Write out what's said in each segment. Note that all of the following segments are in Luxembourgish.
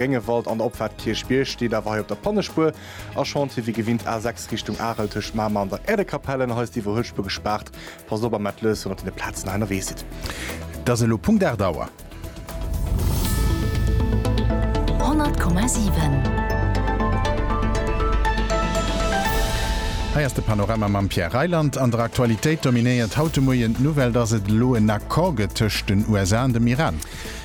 Gréngewald an der Opfahrt Kirchbierg steet awer hei op der Pannespuer a Chantier wéi gewinnt A6 Richtung Arel tëscht Mamer an der Äerdekapell an hei ass d'Iwwerhuelspur gespaart. Passt op a maat lues wann der op den Platzen hei ennerwee sidd. Et ass elo Punkt 8 Auer. 100,7. Hei ass de Panorama mam Pierre Reyland. An der Aktualitéit dominéiert haut de Moien d'Nouvelle, dass et elo en Accord gëtt tëscht den USA an dem Iran.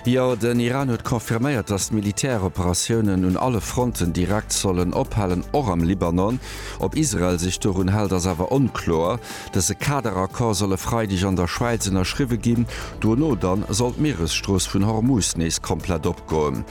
Jo, den Iran huet confirméiert, datt d'Militäroperatiounen un alle Fronten direkt sollen ophalen, och am Libanon. Ob Israel sech dorun hält, ass awer onkloer. Dëse Kaderaccord soll e Freideg an der Schwäiz ënnerschriwwe ginn. Dono dann soll d'Mieresstrooss vun Hormuz nees komplett opgoen.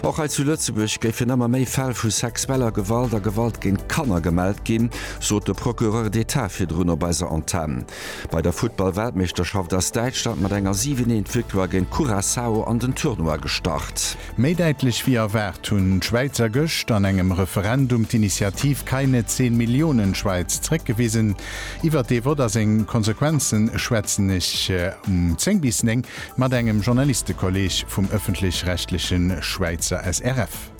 Och hei zu Lëtzebuerg géifen ëmmer méi Fäll vu sexueller Gewalt a Gewalt géint Kanner gemellt ginn, sot de Procureur d'Etat virdrun op eiser Antenn. Bei der Futtball-Weltmeeschterschaft ass Däitschland mat enger 7 Eent Victoire géint Curaçao an den Tournoi gestart. Méi däitlech wéi erwaart hunn d'Schwäizer gëscht an engem Referendum d'Initiativ Keine 10 Millionen Schweiz zréckgewisen. Iwwert dee Vott a seng Konsequenze schwätzen ech um 10 bis 9 mat engem Journalistekolleeg vum ëffentlech-rechtleche Schwäizer SRF.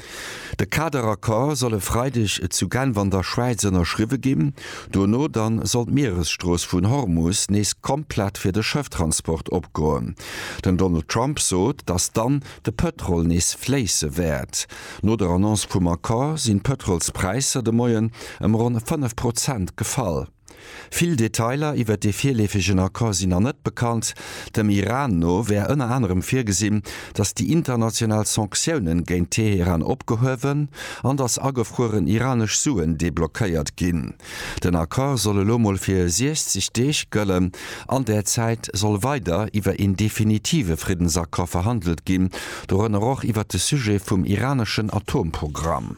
De Kaderaccord soll e Freideg zu Genf an der Schwäiz ënnerschriwwe ginn. Dono dann soll d'Mieresstrooss vun Hormus nees komplett fir de Schëfftransport opgoen. Den Donald Trump sot, datt dann de Pëtrol nees fléisse wäert. No der Annonce vum Accord sinn d'Pëtrolspräisser de Moien ëm ronn 5 Prozent gefall. Vill Detailer iwwert dee virleefegen Accord sinn nach net bekannt. Dem Iran no wär ënner anerem virgesinn, datt déi international Sanktiounen géint Teheran opgehuewen an datt agefrueren iranesch Suen deblockéiert ginn. Den Accord soll elo mol fir 60 Deeg gëllen. An där Zäit soll weider iwwer een definitive Friddensaccord verhandelt ginn, dorënner och iwwert de Sujet vum iraneschen Atomprogramm.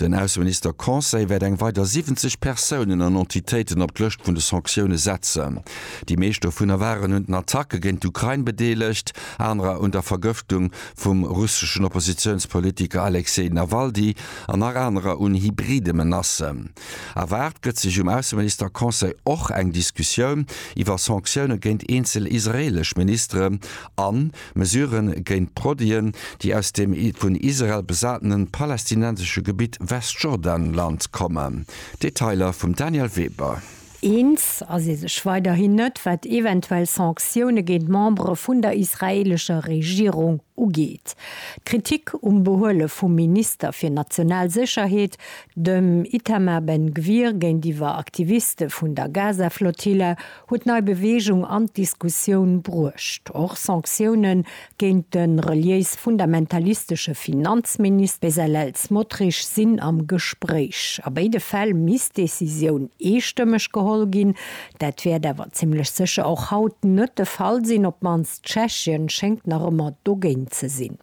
Den Ausseminister-Conseil wäert eng weider 70 Persounen an Entitéiten op d'Lëscht vun de Sanktioune setzen. Déi meescht dovunner waren un den Attacke géint d'Ukrain bedeelegt, anerer un der Vergëftung vum russeschen Oppositiounspolitiker Alexej Nawaldy an nach anerer un hybride Menacen. Erwaart gëtt sech um Ausseminister-Conseil och eng Diskussioun iwwer Sanktioune géint eenzel israeelesch Ministeren an Mesuren géint Produiten, déi aus dem vun Israel besatenen palästinensesche Gebitt Westjordanland kommen. Detailer vum Daniel Weber. Eens ass ee sech weiderhin net, wat eventuell Sanktioune géint Membere vun der israeelescher Regierung ugeet. D'Kritik um Behuele vum Minister fir national Sécherheet, dem Itamar Ben-Gvir, géintiwwer Aktiviste vun der Gaza-Flottille huet nei Beweegung an d'Diskussioun bruecht. Och Sanktioune géint de reliéis-fundamentalistesche Finanzminis Bezalel Smotrich sinn am Gespréich. A béide Fäll misst d'Decisioun eestëmmeg geholl ginn. Dat wäert awer zimlech sécher och haut net de Fall sinn, op d'mannst. Tschechien schéngt nach ëmmer dogéint ze sinn.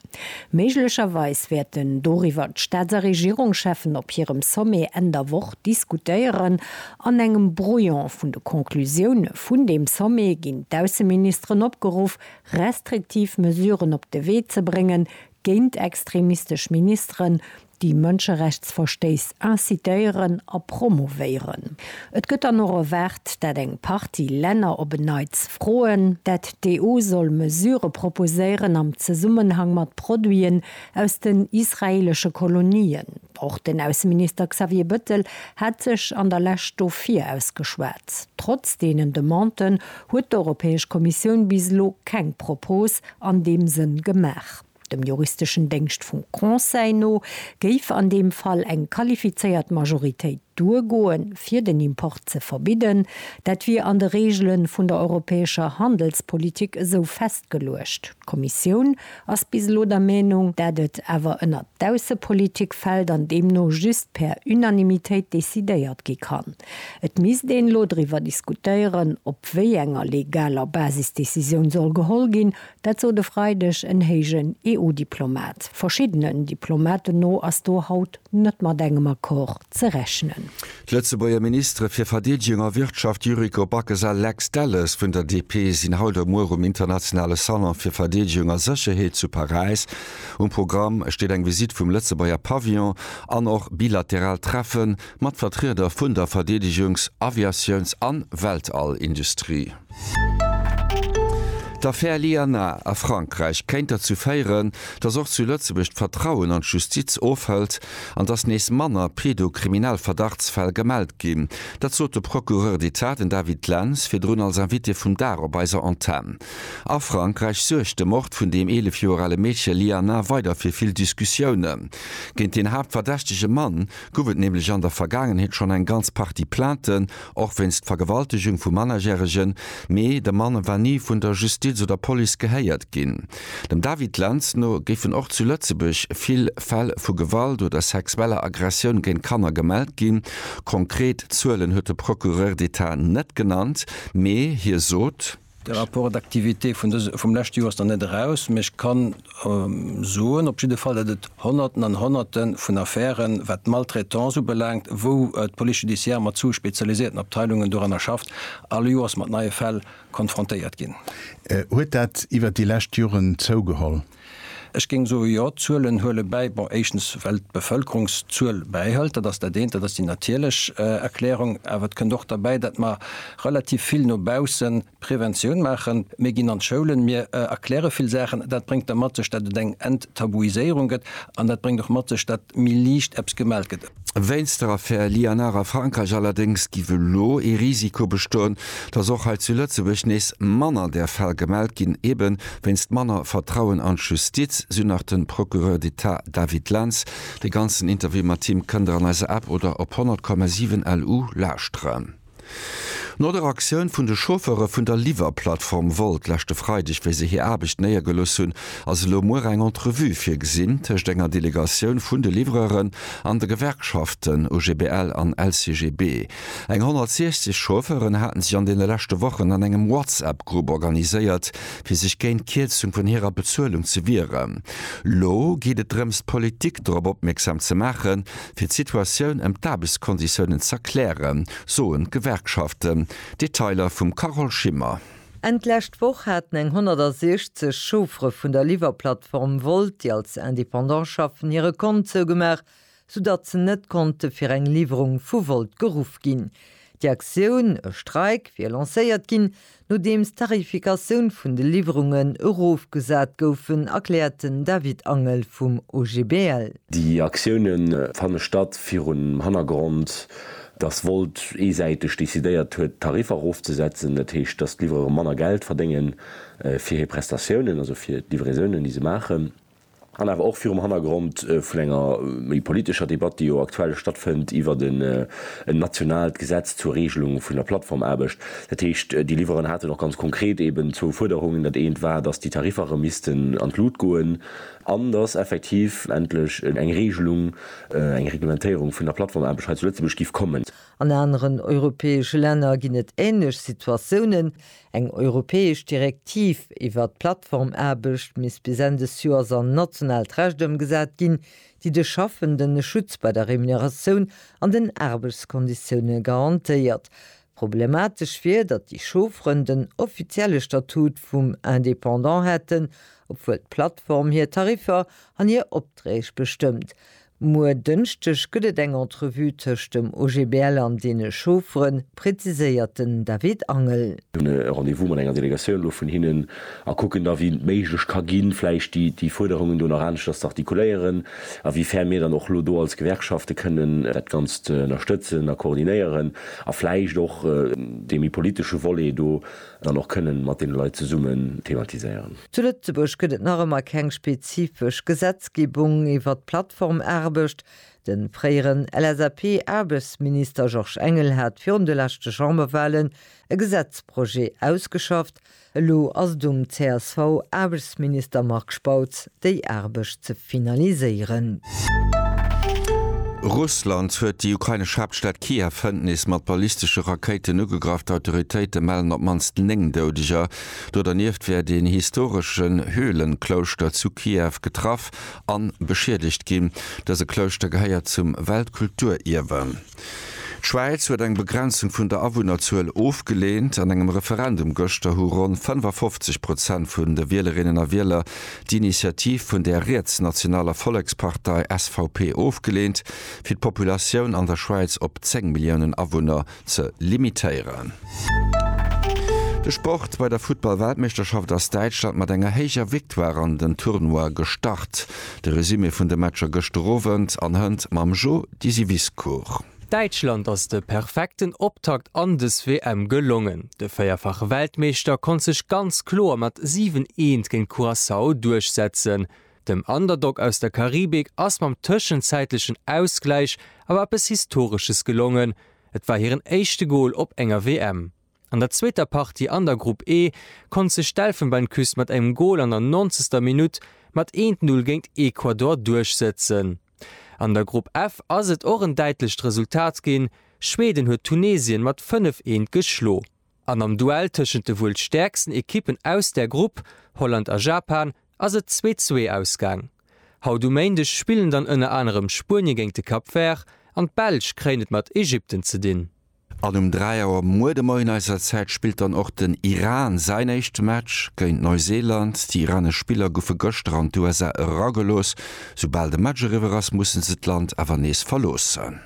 Méiglecherweis wäerten doriwwer d'Staats a Regierungscheffen op hirem Sommet Enn der Woch diskutéieren. An engem Brouillon vun de Conclusioune vun deem Sommet ginn d'Ausseministeren opgeruff, restriktiv Mesuren op de Wee ze bréngen géint extremistesch Ministeren, déi Mënscherechtsverstéiss incitéieren a promouvéieren. Et gëtt dann och erwaart, dat eng Partie Länner op en Neits froen, dat d'EU soll Mesurë proposéieren am Zesummenhang mat Produiten aus den israeelesche Kolonien. Och den Ausseminister Xavier Bettel hat sech an der Lescht dofir ausgeschwat. Trotz deenen Demanden huet d'Europäesch Kommissioun bis elo keng Propos an deem Sënn gemaach. Dem juristeschen Déngscht vum Conseil no géif an deem Fall eng qualifizéiert Majoritéit duergoen, fir den Import ze verbidden. Dat wier an de Reegele vun der europäescher Handelspolitik esou festgeluecht. D'Kommissioun ass bis elo der Meenung, dat et awer ënner d'Aussepolitik fält an deemno just per Unanimitéit decidéiert gi kann. Et misst een elo driwwer diskutéieren, op wéi enger legaler Basis d'Decisioun soll geholl ginn, Dat sot e Freideg en héijen EU-Diplomat. Verschiddenen Diplomaten no ass do haut net mat engem Accord ze rechnen. D'Lëtzebuerger Ministere fir Verdeedegung a Wirtschaft Yuriko Backes a Lex Delles vun der DP sinn haut a muer um internationale Salon fir Verdeedegung a Sécherheet zu Paräis. Um Programm steet eng Visitt vum Lëtzebuerger Pavillon an och bilateral Treffe mat Vertrieder vun der Verdeedegungs-, Aviatiouns an Weltall-Industrie. D'Affär Lianna a Frankräich kéint derzou féieren, datt och zu Lëtzebuerg d'Vertrauen an d'Justiz ofhëlt an datt nees manner pedo-kriminell Verdachtsfäll gemellt ginn. Dat sot de Procureur d'Etat, den David Lenz, virdrun als Invité vum Dag op eiser Antenn. A Frankräich suergt de Mord vun deem 11 Joer ale Meedche Lianna weider fir vill Diskussiounen. Géint deen haaptverdächtege Mann gouf et nämlech an der Vergaangenheet schonn eng ganz Partie Plainten Och wéinst Vergewaltegung vu Mannerjäregen, mee de Mann war ni vun der Justiz oder Police gehéiert ginn. Dem David Lentz no géifen och zu Lëtzebuerg vill Fäll vu Gewalt oder sexueller Aggressioun géint Kanner gemellt ginn. Konkret Zuelen huet de Procureur d'Etat net genannt, mee hie sot, De Rapport d'activité vum leschte Joer ass nach net eraus, mee ech ka soen op jidde Fall, datt et Honnerten an Honnerte vun Affären, wat d'Maltraitance ubelaangt, wou d'Police judiciaire mat zu spezialisierten Abteilungen doranner schafft, all Joers mat neie Fäll konfrontéiert ginn. Huet dat iwwert déi lescht Joren zougeholl? Ech géing soen, jo, d'Zuelen huele bäi. Bon, éischtens well d'Bevëlkerung d'Zuel bäihëlt, dat ass dat eent, dat ass déi natierlech Erklärung. Awer et kënnt och derbäi, datt mer relativ vill no bausse Preventioun maachen. Mir ginn an d'Schoulen, mir erkläre vill Saachen. Dat bréngt da mat sech, datt et eng Enttabuiséierung gëtt an dat bréngt och mat sech, datt méi liicht eppes gemellt gëtt. Wéinst der Affär Liénard a Frankräich allerdéngs giff elo ee Risiko bestoen, datt och hei zu Lëtzebuerg nees manner där Fäll gemellt ginn, ebe wéinst manner Vertrauen an d'Justiz, sou nach de Procureur d'État David Lentz. De ganzen Interview mat him kënnt der an eiser App oder op 100,7 LU lauschteren. No der Aktioun vun de Chauffeure vun der Liwwer-Plattform Wolt leschte Freideg, wéi se hir Aarbecht néiergelooss hunn, ass elo muer eng Entrevue virgesinn tëscht enger Delegatioun vun de Livreuren an de Gewerkschaften OGBL an LCGB. Eng 160 Chauffeuren haten sech an deene leschte Wochen an engem WhatsApp-Grupp organiséiert, fir sech géint d'Kierzung vun hirer Bezuelung ze wieren. Lo geet et drëms, d'Politik dorop opmierksam ze maachen, Fir d'Situatioun ëm d'Aarbechtskonditiounen z'erklären, soen d'Gewerkschaften. Detailer vum Carole Schimmer. Enn d'lescht Woch haten eng 160 Chauffere vun der Liwwerplattform Wolt, déi als Independant schaffen, hire Kont zougemaach, soudatt se net konnte fir eng Liwwerung vu Wolt geruff ginn. Déi Aktioun, e Streik, wier lancéiert ginn, Nodeems d'Tarifikatioun vun de Liwwerungen erofgesat goufen, erkläert den David Angel vum OGBL. Déi Aktioune fanne statt virum Hannergrond, datt Volt eesäiteg decidéiert huet, d'Tariffer erofzesetzen. Dat heescht, datt d'Livrere manner Geld verdénge fir hir Prestatiounen, also fir d'Livraisonen, déi se maachen. an awer och virum Hannergrond vun enger méi politescher Debatt, déi jo aktuell stattfënnt iwwert en nationaalt Gesetz zur Regelung vun der Plattformaarbecht. Dat heescht, déi Liwweren haten och ganz konkret eeben zwou Fuerderungen. Dat eent war, dass déi Tariffer erëm missten an d'Lut goen an dass effektiv endlech eng Regelung, eng Reglementéierung vun der Plattformaarbecht hei zu Lëtzebuerg géif kommen. An aneren europäesche Länner ginn et änlech Situatiounen. Eng europäesch Direktiv iwwert d'Plattformaarbecht misst bis Enn des Joers an nationaalt Recht ëmgesat ginn, déi de Schaffenden e Schutz bei der Remuneratioun an den Aarbechtskonditioune garantéiert. Problematesch wier, datt déi Chaufferen den offizielle Statut vum Indépendant hätten, obwuel d'Plattform hir Tariffer an hir Opträg bestëmmt. Muer Dënschdeg gëtt et eng Entrevue tëscht dem OGBL an deene Chauffere, präziséiert den David Angel. Hunn e Rendez-vous mat enger Delegatioun elo vun hinnen a kucken da wéi et méiglech ka ginn, vläicht déi Fuerderungen do nach aneschters ze artikuléieren, a wéi fern mir dann och elo do als Gewerkschafte kënnen dat Ganzt ënnerstëtzen a koordinéieren a vläicht och dee méi politesche Volet do dann och kënnen mat deene Leit zesummen thematiséieren. Zu Lëtzebuerg gëtt et nach ëmmer keng spezifesch Gesetzgebung iwwert d'Plattformaarbecht. De fréieren LSAP-Aarbechtsminister Georges Engel hat virun de leschte Chamberwahlen e Gesetzprojet ausgeschafft. Elo ass et um CSV-Aarbechtsminister Marc Spautz, déi Aarbecht ze finaliséieren. Russland huet déi ukrainesch Haaptstad Kiew hënt nees mat ballistesche Rakéiten ugegraff. D'Autoritéite mellen op d'mannst 9 Doudeger. Do dernieft wäert een historeschen Höhlenklouschter zu Kiew getraff an beschiedegt ginn. Dëse Klouschter gehéiert zum Weltkulturierwe. D'Schwäiz huet eng Begrenzung vun der Awunnerzuel ofgeleent. An engem Referendum gëschter hu ronn 55 Prozent vun de Wielerinnen a Wieler d'Initiativ vun der rietsnationaler Vollekspartei, SVP, ofgeleent, fir d'Populatioun an der Schwäiz op 10 Milliounen Awunner ze limitéieren. De Sport, Bei der Futtball-Weltmeeschterschaft ass Däitschland mat enger héijer Victoire an den Tournoi gestart. De Resumé vun de Matcher gëschter Owend an hënt mam Jo Disiviscourt. Däitschland ass de perfekten Optakt an des WM gelongen. De véierfache Weltmeeschter konnt sech ganz kloer mat 7, Eent géint Curaçao duerchsetzen. Dem Underdog aus der Karibik ass mam tëschenzäitlechen Ausgläich awer eppes Historesches gelongen, et war hiren éischte Gol op enger WM. An der zweeter Partie an der Grupp E konnt sech d'Elfenbeinküst mat engem Gol an der nonzegster Minutt mat 1-0 géint Ecuador duerchsëtzen. An der Grupp F ass et och en däitlecht Resultat ginn, Schweden huet Tunesien mat 5, 1 geschlo. An am Duell tëschent de wuel stäerksten Ekippen aus där Grupp, Holland a Japan, ass et 2-2 ausgaang. Haut um Méindeg spillen dann ënner anerem Spuenie géint de Cap Vert an d'Belsch kréien et mat Ägypten ze dinn. An um 3 Auer muer de Moien eiser Zäit spillt dann och den Iran säin éischte Match géint Neuseeland. Déi iranesch Spiller goufe gëschter an d'USA eragelooss. Soubal de Match eriwwer ass, musse se d'Land awer nees verloossen.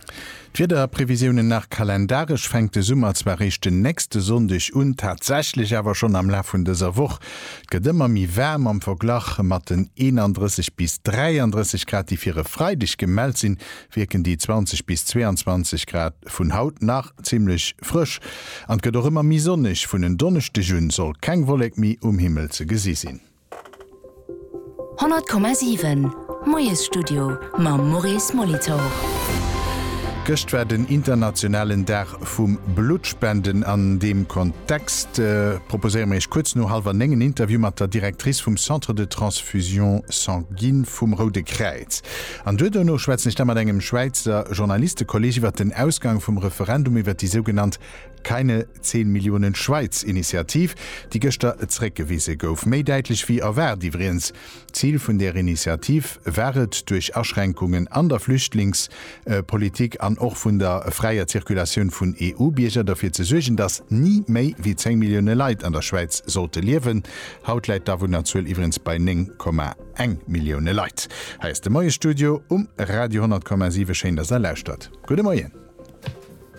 D'Wiederprevisiounen nach, Kalendaresch fänkt de Summer zwar réischt den nächste Sonndeg un, tatsächlech awer schonn am Laf vun dëser Woch. Et gëtt ëmmer méi waarm am Verglach mat den 31 bis 33 Grad, déi fir e Freideg gemellt sinn, wierken déi 20 bis 22 Grad vun haut nach zimmlech frësch an et gëtt och ëmmer méi sonneg. Vun en Donneschdeg un soll keng Wollek méi um Himmel ze gesi sinn. 100,7 Moiesstudio mam Maurice Molitor. Gëscht war den internationalen Dag vum Bluttspenden. An deem Kontext proposéiere mir Iech kuerz no hallwer néng en Interview mat der Directrice vum Centre de Transfusion Sanguine vum Roude Kräiz. An duer duerno schwätzen ech da mat engem Schwäizer Journalistekolleg iwwert den Ausgang vum Referendum iwwert déi sougenannt Keine 10 Milliounen Schwäiz Initiativ, déi gëschter zréckgewise gouf. Méi däitlech wéi erwaart iwwreens. D'Zil vun där Initiativ war et, duerch Aschränkungen an der Flüchtlings politik an och vun der fräier Zirkulatioun vun EU-Bierger, derfir ze suergen, datt ni méi wéi 10 Millioune Leit an der Schwäiz sollte liewen. Haut läit d'Awunnerzuel iwwreens bei 9,1 Millioune Leit. Hei ass de Moiesstudio um Radio 10,7. Schéin, datt Der lauschtert. Gudde Moien.